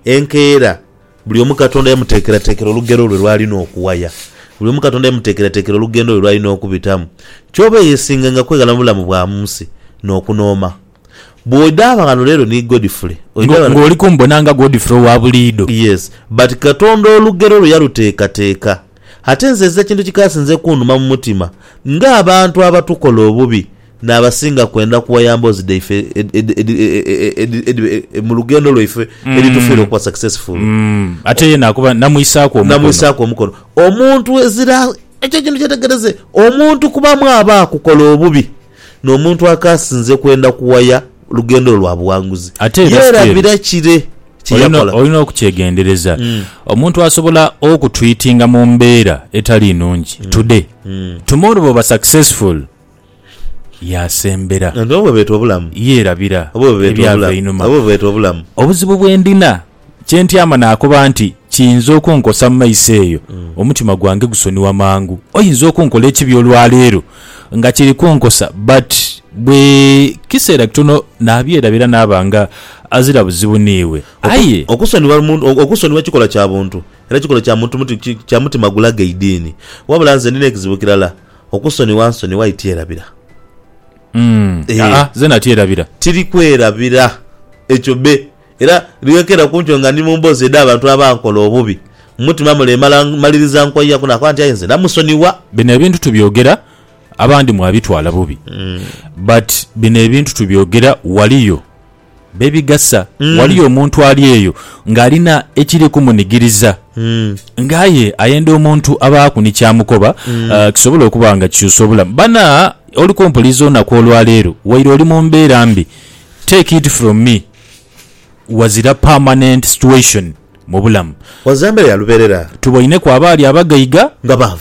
enkeera buli omu Katonda yamuteekerateekera olugero lwe lw'alina okuwaya. Buli omu Katonda yamuteekerateekera olugendo lwe lw'alina okubitamu. Ky'oba eyesinganga kweghala mu bulamu bwa mu nsi n'okunooma. Bw'oidhanga ghano leero ni Godfrey, oidha ghano. Ng'oli kumbona nga Godfrey owa buliidho. Yes. But Katonda olugero lwe yaluteekateeka. Ate nze ekintu ekikaasinze kunduma mu mutima, ng'abantu abatukola obubi. N'abasinga kwenda kuwaya mboozi dhaife edhiba mu lugendo lwaife edhitufiire okuba successful. Ate ye naakuba namwisaaku omukono. Namwisaaku omukono. Omuntu ezira, ekyo ekintu kyetegereze, omuntu kubamu aba akukola obubi, n'omuntu akaasinze kwenda kuwaya lugendo lwo lwa buwanguzi. Ate era Ye Steve, erabira kire kye olina yakola. olina okukyegendereza. Omuntu asobola okutwitinga mu mbeera etali nnungi today, tomorrow bw'oba successful, yaasembera. Oba bwebeeta obulamu. Yeerabira ebyava einhuma. Oba bwebeeta obulamu. Obuzibu bwe ndina, kye ntyama naakoba nti, Kiyinza okunkosa mu maiso eyo. Omutima gwange gusonigha mangu. Oyinza okunkola ekibi olwaleero nga kiri kunkosa, but bwe kiseera kitono naabyerabira naaba nga azira buzibu n'iwe. Aye. Okusonigha omuntu, okusonigha kikola kya buntu era kikola kya mutima gulaga eidiini. Wabula nze ndina ekizibu kirala, Okusonigha nsonigha aye tyerabira. Mm. Eh. Aa, zena tyerabira. Tiri kwerabira. Ekyo be. Era lwekeera ku nkyo nga ndi mu mboozi edh'abantu abankola obubi, mu mutima mule emala mmaliriza nkoyaku nakoba nti aye nze namusonigha. Bino ebintu tubyogera, abandi mwabitwala bubi, but bino ebintu tubyogera waliyo. Be bigasa. Waliyo omuntu ali eyo ng'alina ekiri kumunigiriza, ng'aye ayenda omuntu abaaku ni ky'amukoba kisobole okuba nga kikyusa obulamu. Bana oli kumpuliriza olunaku olwa leero, waire oli mu mbeera mbi, take it from me, wazira permanent situation mu bulamu. Wazira mbeera ya lubeerera. Tuboineku abaali abagaiga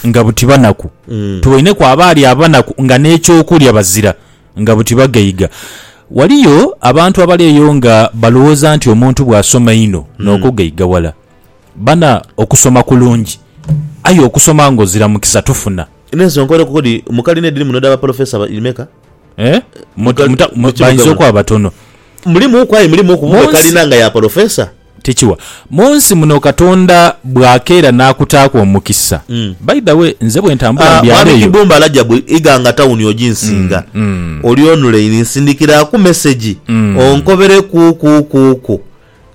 nga buti banaku. Tuboineku abaali abanaku nga n'eky'okulya bazira. Nga buti bagaiga. Waliyo abantu abali eyo nga balowooza nti omuntu bw'asoma inho n'okugaiga wala. Bana, okusoma kulungi, aye okusoma ng'ozira mukisa tofuna. N'ensi onkole kuko dhi mu kalina edhiri muno edha bapolofesa meka? Eh? Mu, mu, mu, bainza okuba batono. Mulimuuku aye mulimuuku bube kalina nga ya polofesa? Tikiwa. Mu nsi muno Katonda bw'akeera n'akutaaku omukisa. By the way, nze bwe ntambula mu byalo Mwami eyo. Kibumba Rajabu Iganga Tawuni oginsinga. Oli onulaini nsindikiraaku mesegi onkobere kuukuukuuku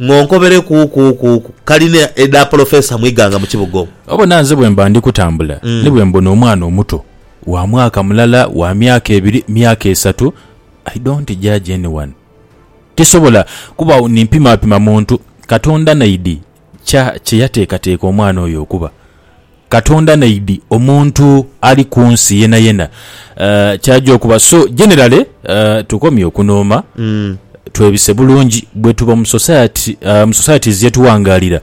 ng'onkobere kuukuukuuku kalina edha Polofeesa mu Iganga mu kibuga omwo. Obona nze bwe mba ndi kutambula ni bwe mbona omwana omuto wa mwaka mulala, wa myaka ebiri, myaka esatu, I don't judge anyone. Tisobola kuba ni mpimapima muntu. Katonda naidhi kya kye yateekateeka omwana oyo okuba. Katonda naidhi omuntu ali ku nsi yenayena ky'aja okuba. So, generally, tukomye okunooma, twebise bulungi. Bwetuba mu society, mu societies ye tuwangaalira,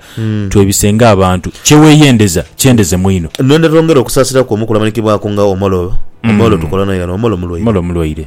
twebise ng'abantu. Kye weeyendeza kyendeze mwino. Nno ne twongera okusaasira kwo mu kulamanikibwa kwo nga Omolo. Omolo tukola naye ghano. Omolo mulwaire. Omolo mulwaire.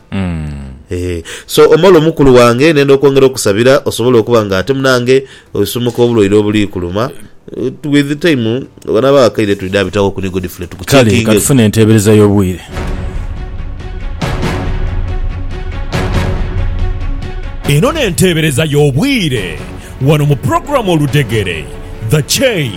Eeh. So Omolo mukulu wange nenda okwongera okusabira osobole okuba nga ate munange osumuka obulwaire obulikuluma with time bano abawakaire twidha bitawo ku ni Godfrey tuku Kale checkinge ku. katufune enteebereza y'obwire. Eno n'enteebereza y'obwire. Wano mu program Oludhegere, The Chain.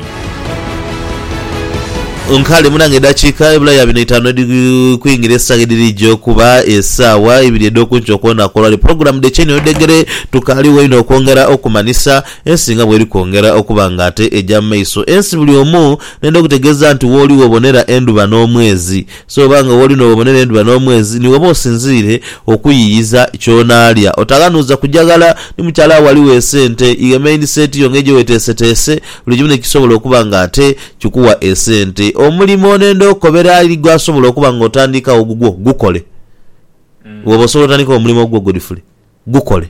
Nkale munange edakiika ebula ya bino itaanu edhi kwingira esaawa edhirija okuba esaawa ibiri edhokunkyo kwonaku olwaleero. Pulogulamu The Chain Oludhegere tukaaligho inho okwongera okumanhisa ensi nga bweri kwongera okuba nga ate eja mu maiso. Ensi buli omu nenda okutegeeza nti wooli wobonera endhuba n'omwezi So oba nga woli n'obubonero endhuba n'omwezi ni woba osinziire okuyiiyiza ky'onaalya. Otaghanuuza kujaghala ni mukyala wo aligho esente. Ighe maindiseti yo ng'ejo weteeseteese buli kimu n'ekisobola okuba nga ate kikuwa esente. Omulimo n'enda okukobera ali gw'asobola okuba nga otandiikawo gugwo, gukole. Bw'oba osobola otandikewo omulimo gwo Godfrey, gukole.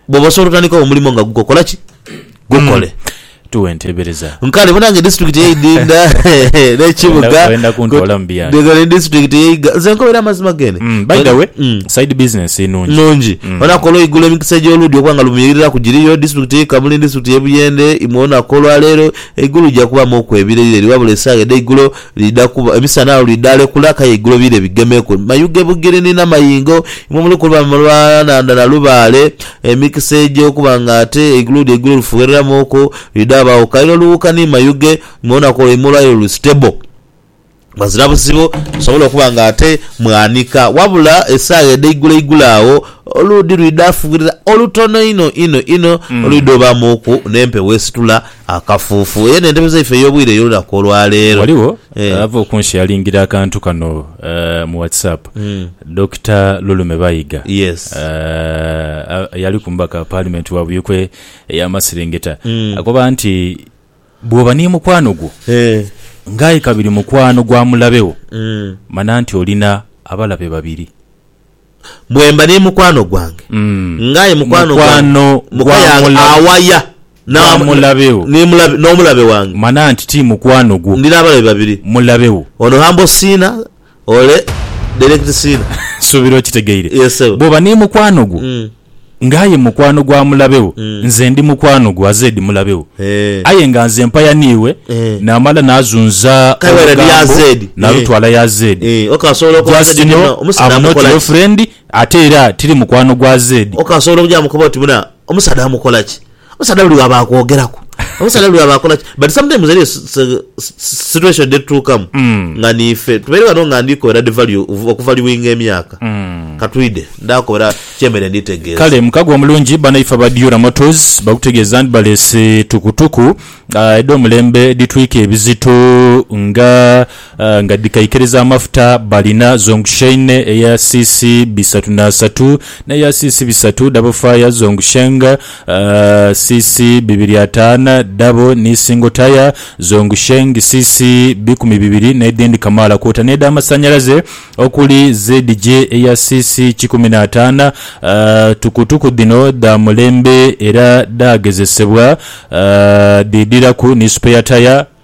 Bwoba osobola otandikawo omulimo nga guko, kola ki? Gukole. Tuwe enteebereza. Nkale bona nga edisiturikiti ey'e Idinda n'ekibuga Oyenda kuntwala mu byayi. Nga ni disitulikiti ey'e Iga. Nze nkobera amazima gene. Mm, by the way, Mm. side business nungi. nungi Mm. bonaku olweigulo emikisa egy'oluudi okuba nga lumiiriraku giriyo disitulikiti ey'e kamuli ni disitulikiti ey'e buyende imwe bonaku olwaleero eigulu lija kubaamu okwebira ireeri wabula esaawa edheigulo Liidha kuba, emisana agho lwidha alekula akaye eigulo bire bigemeku, mayuge bugirini na mayingo, imwe muli kuba mu lwala nhandha na lubaale. Emikisa egy'okuba nga ate eigulo eigulo lifughereramuuku lwidha ghabagho kaire olughuka ni mayuge, mu lunaku olwo imwe olwaire luli stable ghazira buzibu, musobole okuba nga ate mwaanika. Wabula esaagha edheigulo eigulo agho oluudhi lwidha fugherera olutono inho inho inho olwidha obaamuuku n'empewo esitula. Akafuufu, eyo n'entebe zaife ey'obwire ey'olunaku olwaleero. Ghaligho ava okunsheyalingira akantu kano mu WhatsApp, Dokita Lulume Bayiga, eyaliku omubaka wa Paalimenti wa Buikwe ey'amaserengeta, akoba nti bw'oba ni mukwano gwo nga aye kabiri mukwano gwa mulabe wo, mana nti olina abalabe babiri. Bwemba ni mukwano gwange ng'aye mukwano gwange, muka yange awaya n'omulabe wange. Mana nti ti mukwano gwo. Ndina abalabe babiri. Mulabe wo. Ono Humble Sinner, ole Direct Sinner. Nsuubira okitegeire. Bw'oba ni mukwano gwo. nga aye mukwano gwa mulabe wo, nze ndi mukwano gwa Zed mulabe wo. Eh. Aye nga nze mpaya n'iwe, Eh. naamala naazunza Kale wena ni ya olugambo Zed. nalutwala ya Zed. Eh, okasobola okoba Just Zed know, buna, omusaadha I'm not amukola your ki? friend, ate era tiri mukwano gwa Zed. Okasobola okuja mukoba oti buna, omusaadha amukola ki? Omusaadha buli lwaba akwogeraku omusaadha buli lwaba akola ki but sometimes eriyo s- s- s- situation dhetutuukamu Mm. nga niife tubaire ghano nga ndi kobera di value okuvaluinga emyaka Mm. katwide ndakobera kyemere nditegeeza Kale mukago omulungi banaife aba Diura Motors bakutegeeza nti baleese tukutuku ah, edh'omulembe edhitwika ebizito nga nga dhikaikiriza amafuta balina Zhongsheine eya cc bisatu n'asatu n'eya cc bisatu dhabo Fire Zhongsheng cc bibiri ataana dhabo ni Single Tyre Zhongsheng cc bikumi bibiri n'edhindi kamaala kwota n'edhamasannyalaze okuli ZJ eya cc kikumi n'ataana. Tukutuku dhino dha mulembe era dhaagezesebwa dhiidhiraku ni spare tyre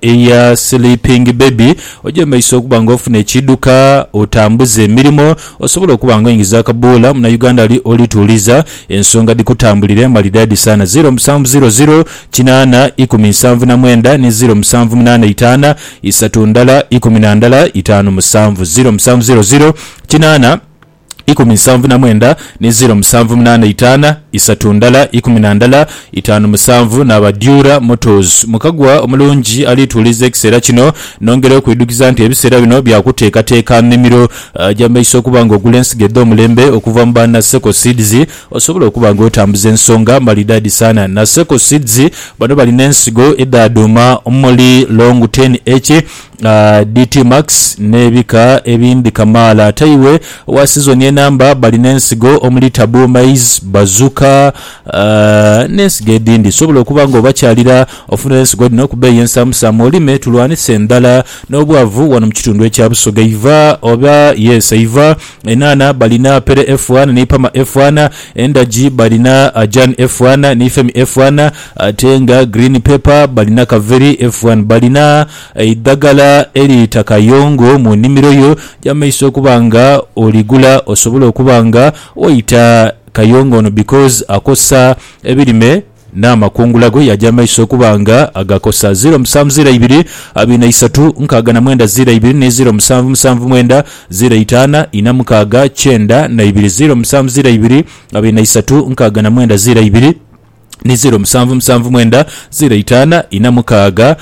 Eya Sleeping Baby, Ogyembeisa okuba nga ofuna ekiidhuka, otambuza emirimo, osobola okuba nga oingiza akabuula, Munauganda ali oli tuuliza, ensonga dhikutambulire malidaadi saana, ziro musanvu ziro ziro kinaana ikumi nsanvu na mwenda ni ziro musanvu munaana itaana isatu ndala ikumi na ndala itaanu musanvu, ziro musanvu ziro ziro kinaana. ikumi nsanvu na mwenda ni ziro musanvu munaana itaana isatu ndala ikumi na ndala itaanu musanvu naaba Durer Motors. Mukagwa omulungi alituuliza ekiseera kino. Nongera okwidhukiza nti ebiseera bino bya kuteekateeka nnimiro gya maiso okuba nga ogula ensigo edh'omulembe okuva mu ba Naseko Seeds osobola okuba nga otambuza ensonga malidaadi sana. Naseko Seeds bano bali n'ensigo edha dhuuma omuli Long Ten H, DTmax n'ebika ebindhi kamaala. Ate iwe owa sizoni enamba bali n'ensigo omuli Taboo Maize, Bazooka n'ensigo edhindhi. Sobola okuba nga obakyalira ofunire ensigo dhino ku bbeeyi ensaamusaamu olime tulwanise endhala n'obwavu wano mu kitundu ekya Busoga. Iva oba yes Iva enhaanha balina Pere F1 ni Pama F1. Endagi balina Jan F1 ni Femi F1 ate nga Green Pepper balina Kaveri F1. Balina. Eidhagala eriita kayongo mu nnimiro yo gy'amaiso okuba nga oligula osobole okuba nga waita kayongo ono because akosa ebirime n'amakungula go yaja amaiso okuba nga agakosa. Ziro musanvu ziro eibiri abiri na isatu nkaaga na mwenda ziro eibiri ni ziro musanvu musanvu mwenda ziro itaana ina mukaaga kyenda na ibiri ziro musanvu ziro eibiri abiri na isatu nkaaga na mwenda ziro eibiri. ni zeero musanvu musanvu mwenda zeero itaana ina mukaaga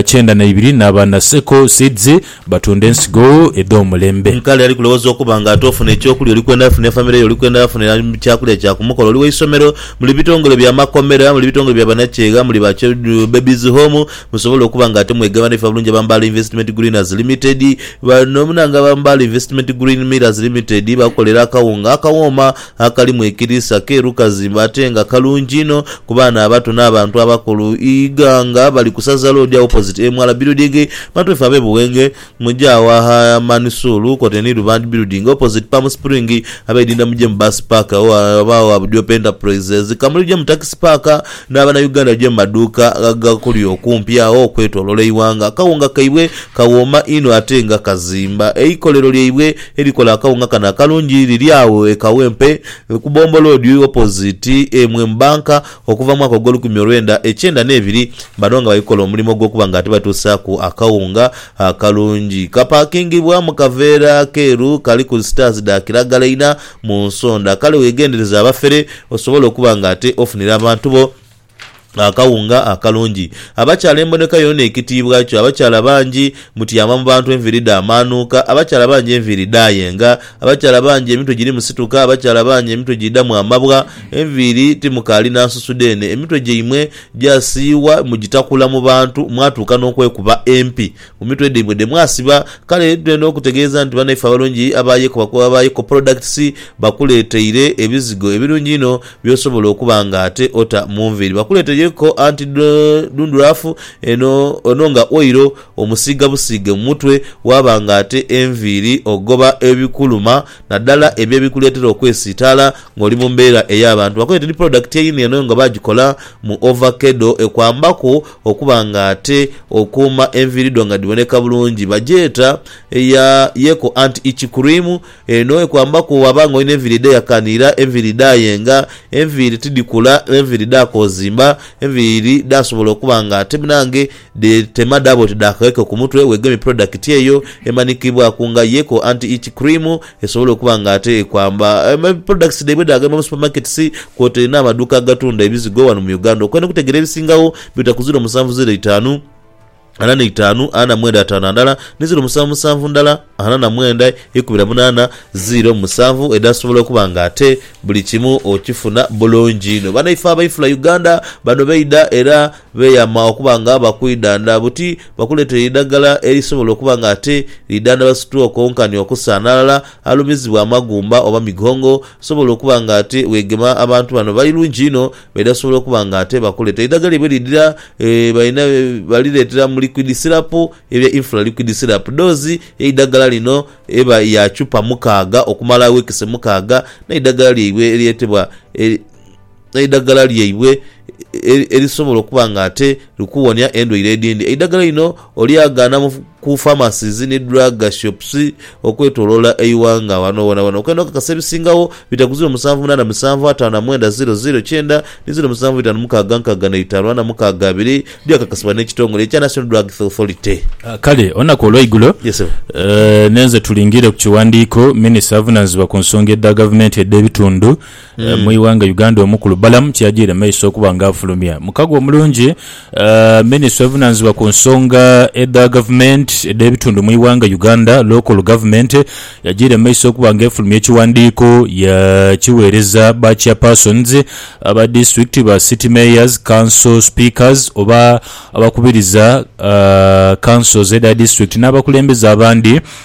kyenda na ibiri naaba na Seko Seeds batunda ensigo edh'omulembe. Nkale ali kulowoza okuba nga ate ofuna eky'okulya oli kwendha funa efamire yo, oli kwendha funira kyakulya kya ku mukolo, oli wa isomero, muli bitongole bya makomera, muli bitongole bya banakyegha, muli ba Children Babies Home musobole okuba nga ate mwegaba n'eife abalungi aba Mbaale Investment Greeners Limited. Bano na nga aba Mbaale Investment Green Millers Limited bakolera akawunga akawooma. Akalimu ekiriisa keeru kazimba ate nga kalungi inho ku baana abato n'abantu abakulu. Iga nga bali ku saza loodi agho opposite emwala birudingi. Bantu baife ab'e Buwenge muje agho agha Manisuulu kwotaire ni Rubandi birudingi opposite Palm Spring. Abeidinda muje mu Bus Park agho aghabagho gha Budiopa Enterprises. Kamuli muje mu Taxi Park n'abana Uganda muje mu maduuka agakuli okumpi agho okwetolola eighanga. Akawunga kaibwe kawooma inho ate nga kazimba. Eikolero lyaibwe. Erikola akawunga kano akalungi liri agho e Kawempe ku Bombo Road opposite Mwem Bank okuva mu mwaka ogw'olukumi olwenda ekyenda n'ebiri bano nga bali kukola omulimo ogw'okuba nga ati batuusaaku akawunga akalungi. Kapakingibwa mu kaveera akeeru kaliku sitaazi dha kiragala inha mu nsonda kale weegendereze abafere osobole okuba nga ate ofunira abantu bo akawunga akalungi. Abakyala emboneka yoona ekitiibwa kyo. Abakyala bangi mutyama mu bantu enviiri dhaamaanuuka. Abakyala bangi enviiri dhaayenga. Abakyala bangi emitwe girimu situka. Abakyala bangi emitwe giidhamu amabwa. Enviiri timukaali na nsusu dheene. Emitwe gyaimwe gyasiiyibwa mugitakula mu bantu mwatuuka n'okwekuba empi. Mu mitwe dhaimwe dhe mwasiba. Kale twidha okutegeeza nti banaife abalungi aba Yeko, aba Yeko Products, bakuleeteire ebizigo ebirungi einho by'osobola okuba nga ate ota mu nviiri. Bakuleeteire Yeko Anti Dundruff, eno ono nga oil omusiiga busiige mu mutwe waaba nga ate enviiri ogoba ebikuluma naddala ebyo ebikuleetera okwesiitaala ng'oli mu mbeera ey'abantu. Bakuleeteire ni product eino eno nga baagikola mu ovakedo ekwambaku Okuba nga ate okuuma enviiri dho nga dhiboneka bulungi. Bagyeta eya Yeko Anti Itch Cream. Eno ekwambaku bw'aba nga olina enviiri edheyakaniira, enviiri edhaayenga, enviiri tidhikula, enviiri dhaakoozimba, enviiri dhaasobola okuba nga ate munange dhetema dhaaba oti dha kaweke ku mutwe, weegemye pulodakiti eyo emanikibwaku nga Yeko Anti Itch Cream. Esobola okuba nga ate ekwamba products dhaibwe dhagema mu supermarkets kwotaire n'amaduuka agatunda ebizigo wano mu Uganda. Okwenda okutegeera ebisingagho bita ku ziro musanvu ziro itaanu ana na itaanu ana na mwenda ataano andala ni ziro musanvu musanvu ndala ana na mwenda ikumi na munaana ziro musanvu edhasobola okuba nga ate buli kimu okifuna bulungi inho. Banaife abainfula Uganda bano baidha era. Beeyama okuba nga bakwidhandha buti bakuleetere eidagala erisobola okuba nga ate lidhandhaba situwooko nkani okusa n'alala alumizibwa amagumba oba migongo. Osobola okuba nga ate weegema abantu bano bali lungi inho baidha sobola okuba nga ate bakuleetera eidagala lyaibwe lidhira balina balireetera mu liquid syrup ebya Infra Liquid Syrup. Doozi y'eidagala lino eba ya chupa mukaaga okumala wiikisi mukaaga n'eidagala lyaibwe eryetebwa eidagala lyaibwe erisobola okuba nga ate likuwonia endwaire edhindi. Eidagala lino olyagaana ku pharmacies ni drug shops okwetoloola eighanga ghano ghonaghoona. Okwenda okakasa ebisingagho bita ku ziro musanvu munaana musanvu ataano na mwenda ziro ziro kyenda ni ziro musanvu itaanu mukaaga nkaaga na itaanu ana mukaaga abiri byakakasibwa n'ekitongole ekya National Drugs Authority. Kale olunaku olweigulo Yes, Ssebo. eh, nenze tulingirire ku kiwandiiko minisita avunaanyizibwa ku nsonga edha gavumenti edh'ebitundu mu ighanga Uganda omukulu Balaam kyajiire maiso okuba nga afulumya mukago omulungi Minisita ovunanizibwa ku nsonga edha gavumenti edh'ebitundu mu ighanga Uganda, Local Government, yajiire maiso okuba nga efulumya ekiwandiiko ya kiweereza ba Chairpersons aba Disitulikiti, ba City Mayors, Council Speakers oba abakubiriza Councils edha Disitulikiti n'abakulembeze abandi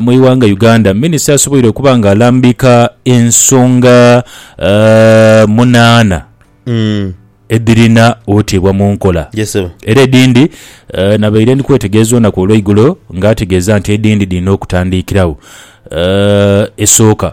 Mu ighanga Uganda, minisita asoboire okuba nga alambika ensonga munaana edhirina oteebwa mu nkola era edhindi nabaire ndi kwetegereza olunaku olweigulo nga ategeeza nti edhindi dhirina okutandikiragho. Esooka.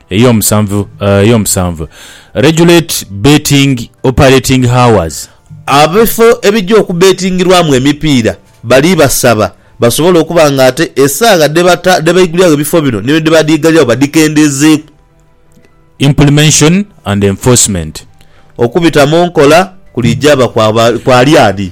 Ey'omusanvu, Ey'omusanvu, Regulate betting operating hours. Ab'ebifo ebija okubetingirwamu emipiira bali basaba basobole okuba nga ate esaagha dhe baiguliragho ebifo bino ni dhe badhiigaliragho badhikendeezeeku. Implemention and enforcement. Okubita mu nkola kulijaaba kwa lyaadi?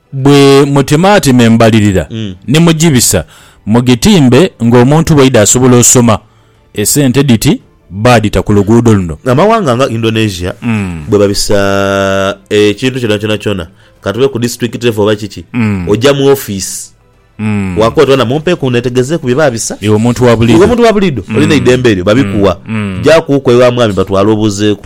Bwe mutemaatema embalirira ni mugibisa, mugitimbe ng'omuntu bw'aidha asobola osoma. Esente dhiti baadhita ku luguudo luno. Amawanga nga Indonesia bwe babisa ekintu kyonakyona kyona, ka tube ku disiturikiti levo oba kiki, oja mu ofiisi waako oti, Bana mumpe ku neetegezeeku bye baabisa. Iwe omuntu wa buliidho. Iwe omuntu wa buliidho olina eidembe eryo, babikuwa. Jaaku ku ewa mwami batwale obuuzeeku.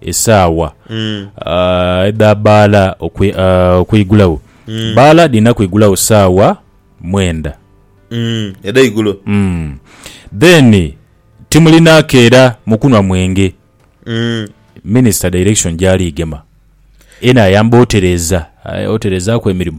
esaawa edha bbaala okwigulagho. Bbaala dhirina kwigulagho saawa mwenda. Edheigulo. Then timulina keera mu kunhwa mwenge. Minisita direction gyali gema. Eno ayamba otereeza, aye otereezaaku emirimo.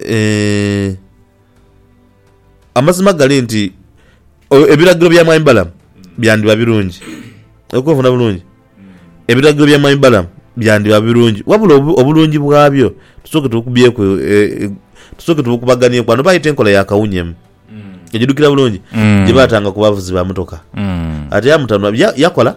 Eeh, amazima gali nti ebiragiro bya mwami Balamu byandiba birungi. Oli kunfuna bulungi? Ebiragiro bya mwami Balamu byandiba birungi, wabula obulungi bwabyo tusooke tubukubyeku, eeh, tusooke tubukubaganiaku ghano. Baayita enkola ya kawunyemu, ojidhukira bulungi? Gye baatanga ku bavuzi ba motoka. Ate yamutanhula, yakola?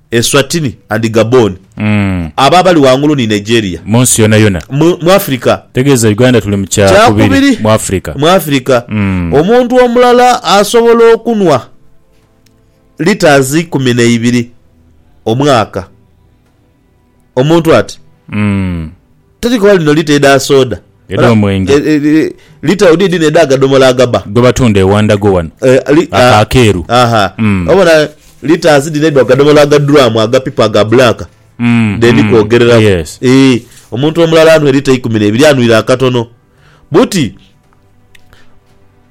Eswatini and Gabon. Abo abali ghangulu ni Nigeria. Mu nsi yonayona. Mu, mu Afirika. Ntegeeza Uganda tuli mu kya kubiri mu Afirika. Mu Afirika. Omuntu omulala asobola okunhwa litres ikumi na ibiri omwaka. Omuntu ati Mm. teri koba lino lita edha soda. Edh'omwenge. Eh, eh, eh, Lita odi edhino edha gadomola agaba. Gwe batunda ewa Ndago wano. Eh, li- Ako ah, akeeru. aha. Mm. Obona litres dhino edha gadomola aga drum agapipa aga black. Mm, Dhendi mm. kwogereraku. Yes. Eh, omuntu omulala anwe lita ikumi n'ebiri anwire akatono. Buti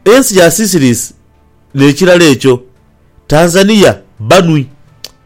ensi ya Seychelles n'ekirala ekyo Tanzania banwi.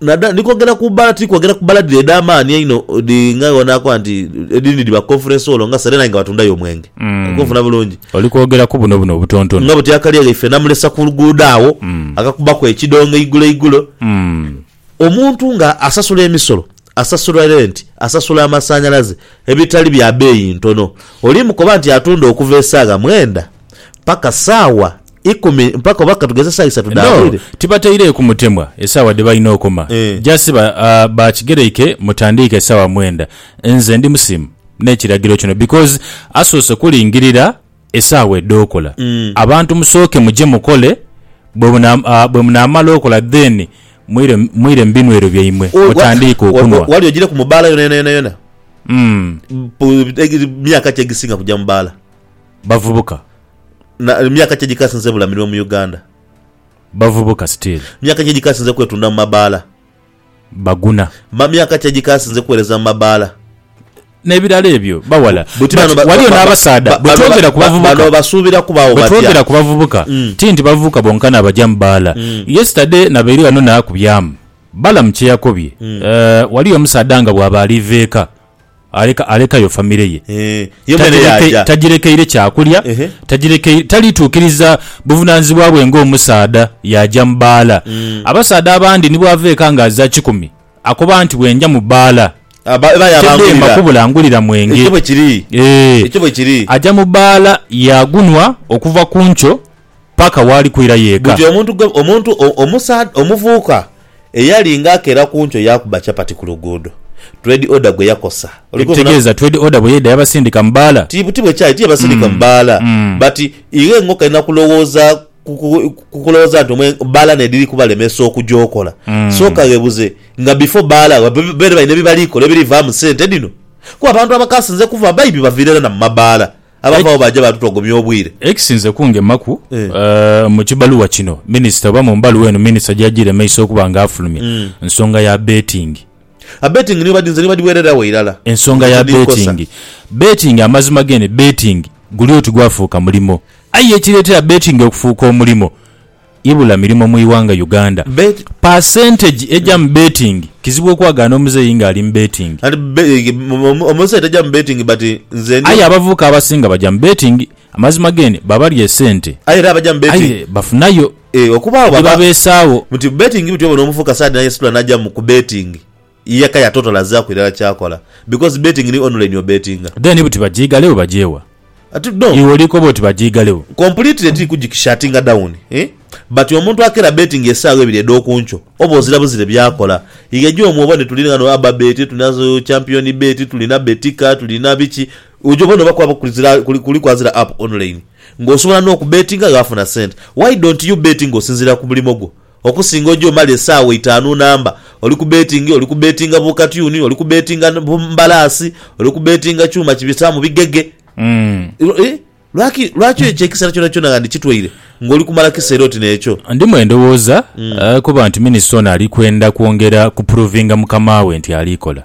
Nadala ndi kwogera ku bbaala, tiri kwogera ku bbaala dhire edh'amaani einho dhi nga obona akoba nti edhindhi dhiba Conference Hall nga Serena aye nga batundayo omwenge. Oli kunfuna bulungi? Oli kwogera ku buno buno obutontono. Nga buti akali egho ife namulesa ku luguudo agho, akakubaku ekidongo eigulo eigulo. Omuntu nga asasula emisolo, asasula renti, asasula amasanhalaze, ebitali bya beeyi ntono, oli mukoba nti atunda okuva esaagha mwenda paka saawa Ikumi mpaka oba katugeze esaa isatu dha No, bwire. tibataireeku mutemwa esaawa dhe balina okoma. Eh. Just ba, ah, bakigereike mutandiike saawa mwenda. Nze ndi musimu n'ekiragiro kino because asoose kulingirira esaawa edh'okola. Abantu musooke muje mukole, bwe muna, ah, bwe munaamala okola then mwire, mwire mu binwero byaimwe O- wa- mutandiike wa- wa- okunwa. Wali ogireku mu bbaala yona yona yona yona? Mm. Pu- egi- Myaka ki egisinga kugya mu bbaala? Bavubuka, Na myaka ki egikasinze ebula mirimo mu Uganda? Bavubuka, Still. Myaka ki egikasinze kwetunda mu mabaala? Baguna. Ma myaka ki egikasinze kuwereza mu mabaala? Nebirala ebyo baghala. Buti But bano ba- waliyo ba- ba- n'abasaadha ba- bano ba- bwetwogera ku ba- bano bavubuka basuubira kubaawo batya? bwetwogera ku bavubuka Mm. ti nti bavubuka bonkana abaja mu baala. Mm. Yesterday nabaire ghano nakubyamu Balamu kyeyakobye. Eh, waliyo omusaadha nga bwaba aliva eka Aleka, alekayo famire ye. Eeh, yo mwene Tagireke, yaaja. tagirekeire kyakulya, Ehe. tagirekeire, taliituukiriza buvunaanyizibwa bwe ng'omusaadha, yaaja mu bbaala. Abasaadha abandi ni bw'ava eka nga aza kikumi, akoba nti, Bwenja mu bbaala, Aba- eba tedheema yaabangulira. kubula ngulira mwenge. Ekyo bwe kiri. Eeh. Ekyo bwe kiri. Aja mu bbaala, yaagunwa okuva ku nkyo paka waali kwira yeeka. Buti omuntu gwe, omuvubuka eyali nga akeera ku nkyo yaakuba chapati ku luguudo, Twed Order gwe yakosa. Ekitegeeza Twed Order bwe yaidha yabasindika mu bbaala? Ti bwe kyali, tiyabasindika mu bbaala. But ighe ng'okalina kulowooza ku kulowooza nti bbaala n'edhiri kubalemesa okuja okola, sooka ghebuze nga before bbaala babaire balina bye bali kola ebiri vaamu sente dhino? Kuba abantu abakasinze kuva baibi baviira irala na mu mabbaala. Abavagho baaja baatutogomya obwire. Ekisinze kungemaku mu kibaluwa kino, minisita oba mu mbaluwa eno minisita gy'ajiire maiso okuba nga afulumya, nsonga ya beetingi. Abeetingi nibo badinze ni badhiweereragho irala. Ensonga ya beetingi. Beetingi amazima g'eno beetingi guli oti gwafuuka mulimo. Aye ekireetera beetingi okufuuka omulimo. Ibula mirimo mu ighanga Uganda. Percentage eja mu betting kizibu okwagaana omuzeeyi nga ali mu betting. Omuzeeyi taja mu betting but nze ndi. Aye abavubuka abasinga baja mu betting amazima gene babalya esente Aye era abaja mu betting. Aye bafunayo. Okubaagho baba. Ebibabeesaawo. Nti betting bityo obona omuvubuka saadi nayesitula naja mu ku betting. yeka yatotalazaaku irala kyakola because betting ni online obetinga. Then buti bajiigale wo bagye wa? Ati no. Iwe oli koba oti bajiigale wo. Completely tiri kujikishatinga down but omuntu akera betting esaawa ebiri edhokunkyo oba ozira buzire byakola ye gye omwooba nitulina ghano aba bet tulina champion bet tulina betika tulina biki oja obona oba kwaba kuli kwazira app online nga osobola nokubetinga ghe afuna sente why don't you bet nga osinzira kumulimo gwo Okusinga oja omala esaawa itaanu namba oli ku beetingi, oli ku beetinga bu katyuni, oli ku beetinga bu mbalaasi, oli ku beetinga kyuma kibisaamu bigege. Ih, lwaki, lwaki ekyo ekiseera kyonakyona nga ndikitwaire ng'oli kumala kiseera oti n'ekyo? Ndimu endowooza kuba nti minisita ono ali kwenda kwongera kupuruvinga mukama we nti aliikola.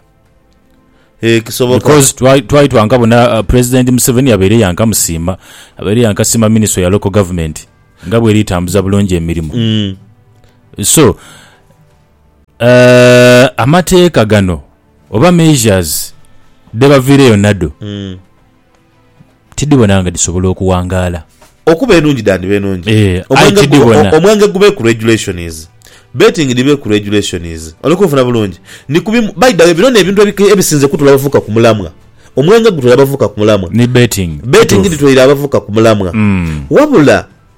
Ee, kisoboka. Because twali twali twankabona uh, President Museveni yabaire yankasiima abaire yankasiima Ministry ya Local Government nga bweri etambuza bulungi emirimo. Mm. So uh, amateeka gano oba measures dhebaviireyo nadho Mm. Tidhibona nga dhisobola okuwangaala. Okuba enungi dhandhiba enungi. Aye tidhibona. Omwenge gube ku regulations. Betting dhibe ku regulations. Oli kunfuna bulungi? Ni ku bimu, by the way bino n'ebintu ebisinze kutwla abavubuka ku mulamwa. Omwenge gutwla abavubuka ku mulamwa. Ni betting. Betting dhitwaire abavubuka ku mulamwa. Wabula.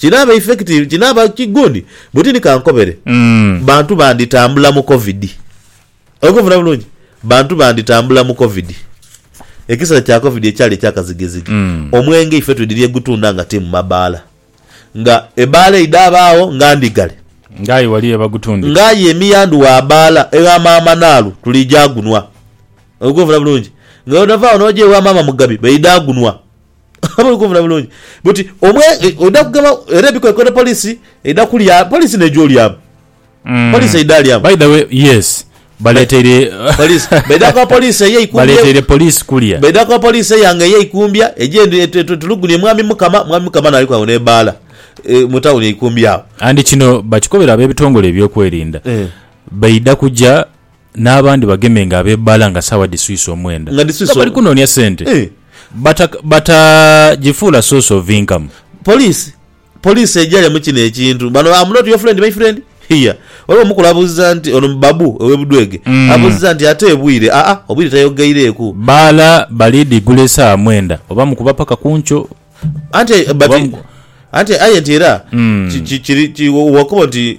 Kinaaba effective, kinaaba ki good? Butini kankobere. Bantu banditambula mu covid. Oli kunfuna bulungi? Bantu banditambula mu covid. Ekiseera kya covid ekyali ekya kazigizigi. Omwenge ife twidhira egutunda nga ti mu mabaala. Nga ebaala eidha abaagho nga ndhigale. Nga aye wali yebagutundira. Nga aye emiyandhu wa baala egha maama Naalu tuli gya gunwa. Oli kunfuna bulungi? Nga bwotava agho noja ewa maama Mugabi baidha gunwa. Oba oli kunvuna bulungi? But omwe oidha kugema era ebikwekweto police eidha kulya police neija olyamu. Police eidha lyamu. By the way, yes. Baleteire Police. Baidha kuba police eyo eikumbye. Baleteire police kulya. Baidha kuba police eyange eyo eikumbya eje endi etulugunie Mwami Mukama, Mwami Mukama n'aliku agho n'ebaala mu town eikumbye agho. And kino bakikobera ab'ebitongole eby'okwerinda. Baidha kuja. n'abandi bagemenga abeebala nga saawa dhiswise omwenda Nga dhiswise nga bali omwenda. kunoonia sente Eh. bata batagifuula source of income. Police Police ejaria mu kino ekintu. Bano am not your friend my friend here. Waliwo omukulu abuuziza nti ono Babu owe Budwege abuuziza nti ate obwire aa obwire tayogaireeku. Baala bali dhi gula esaawa mwenda oba mukuba paka kunkyo. Anti but Oba mu- anti aye nti era ki- ki- kiri ki- wakobo nti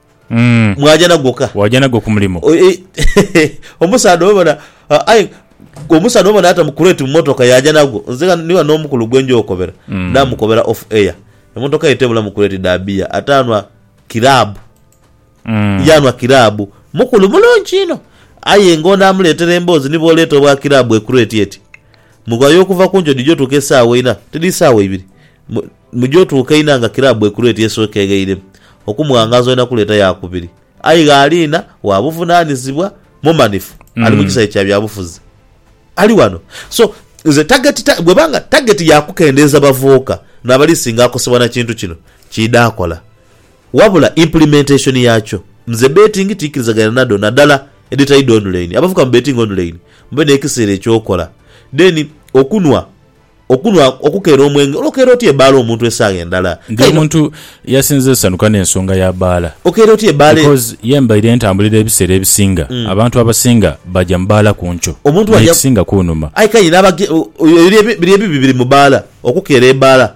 Mwaja nagwo ka? Waja nagwo ku mulimo? Omusaadha oyo bona, aye omusaadha oyo bona yata mu crate mu motoka yaja nagwo. Nze ghano ni ghano omukulu gwe nja okobera, namukobera off air. Emotoka ye tebulamu crate dha beer, ate anwa kiraabu. Ye anwa kiraabu. Mukulu mulungi inho. Aye nga ono amuleetera emboozi ni bw'oleeta obwa kiraabu e crate eti, mughayo okuva ku njojo dhije otuuke esaawa einha, tidhi isaawa ibiri? Mu gyo tuukainha nga kiraabu ekulu eti esookeegheire okumwangaaza olina kuleeta yaakubiri. Aye gh'aliina wa buvunaanizibwa mumanifu, ali mu kisae kya byabufuzi. Ali ghano. So, nze tageti ta, bw'eba nga tageti ya kukendeeza bavuuka n'abali singa akosebwa na kintu kino, kiidha kola. Wabula implementation yaakyo, nze beetingi tiikirizaganya nadho nadala edhitali dha onulaini. Abavubuka mubeetinge onulaini, mube n'ekiseera eky'okola. Then okunhwa. Okunhwa, okukeera omwenge. Olwo okeera otya ebaala omuntu esaagha endala? Ndi Kaino, omuntu yasinze esanuka n'ensonga ya baala. okeera otya ebaala e. Because ye mbaire ntambulira ebiseera ebisinga abantu abasinga baja mu baala ku nkyo. Omuntu bw'aja. N'ekisinga kunhuma. Aye kaino abage, o, o, biri ebi, biri ebibi biri mu baala, okukeera ebaala.